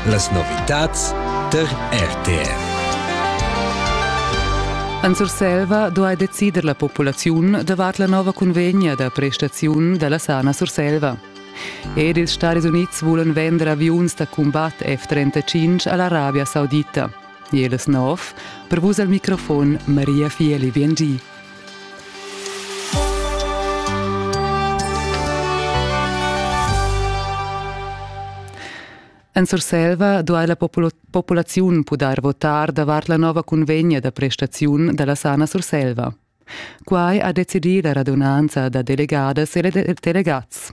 Las novitads tar RTR. En Surselva duai decider la populaziun davart la nova cunvegna da prestaziun da la sana Surselva. Ed ils Stadis Unids vulan vender aviuns da cumbat F-35 a l'Arabia Saudita. Jelis Nov, per vus al microfon Maria Fieli Viengì. En Surselva duai la populaziun pudair votar davart la nova cunvegna da prestaziun da la Sana Surselva. Quai ha decidì la radunanza da delegadas e delegats.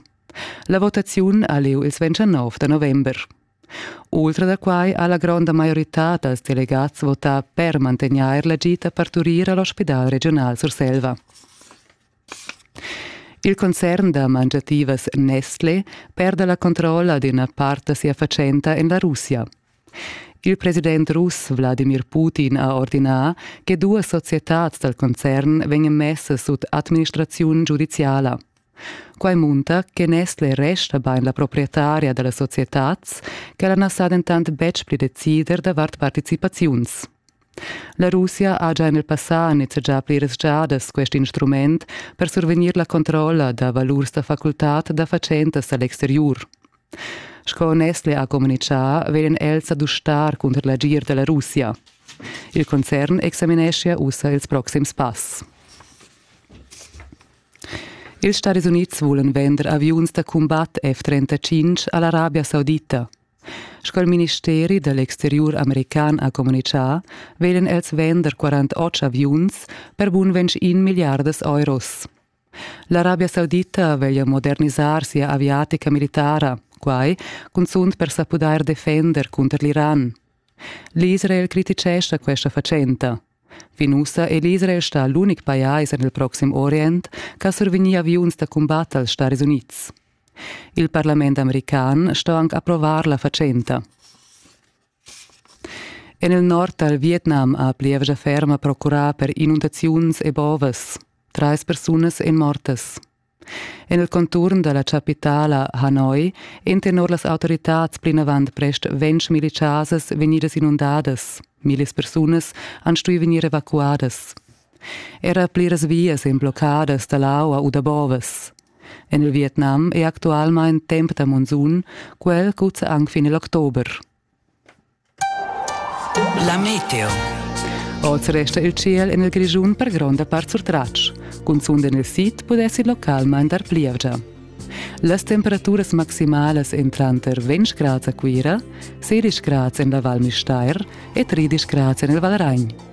La votaziun ha lieu il 29 da november. Ultra da quai ha la gronda maioritad dals delegats votà per mantegnair la gita parturir a l'ospidal regiunal Surselva. Il concern da mangiativas Nestle perda la controlla d'ina part da sia fatschenta en la Russia. Il president russ Wladimir Putin ha ordinà che duas societads dal concern vegnan messas sut administraziun giudiziala. Quai munta che Nestle resta bain la proprietaria da la societad, quella na sa dentant betg pli decider davart participaziuns. La Russia ha già en il passà nizzegià pliras giadas quest instrument per survegnir la controlla da valurs da facultad da fatschentas a l'exteriur. Sco Nestle ha communitgà, vegnan els a dustar cunter l'agir da la Russia. Il concern examineschia ussa ils proxims pass. Ils Staris Unids vulan vender aviuns da cumbat F-35 a l'Arabia Saudita. Sco il ministeri da l'exteriur american ha communitgà, veglan els vender 48 aviuns per bun 21 milliardas euros. L'Arabia Saudita veglia modernisar sia aviatica militara, quai cunzunt per sa pudair defender cunter l'Iran. L'Israel criticescha questa fatschenta. Fin ussa è l'Israel stà l'unic pajais en il Proxim Orient ch'ha survegnì aviuns da cumbat als Staris Unids. Il parlament american sto anc approvar la fatschenta. En il nord dal Vietnam ha plievgia ferma procurà per inundaziuns e bovas. Trais persunas èn mortas. En il conturn da la chapitala Hanoi èn tenor las autoritads plinavant prest ventg militars vegnidas inundadas. Millis persunas han stuì vegnir evacuadas. Era pliras vias èn bloccadas da l'aua u da bovas. En il Vietnam è actualmain temp da monsun, quel cuzza anc fin il october. La meteo. Oz resta il tschiel en il Grischun per gronda part surtratg. Cunzunt en il sid pudess il local mandar plievgia. Las temperaturas maximalas èn tranter 20 grads a Cuira, 16 grads en la Val Müstair e 13 grads en il Valragn.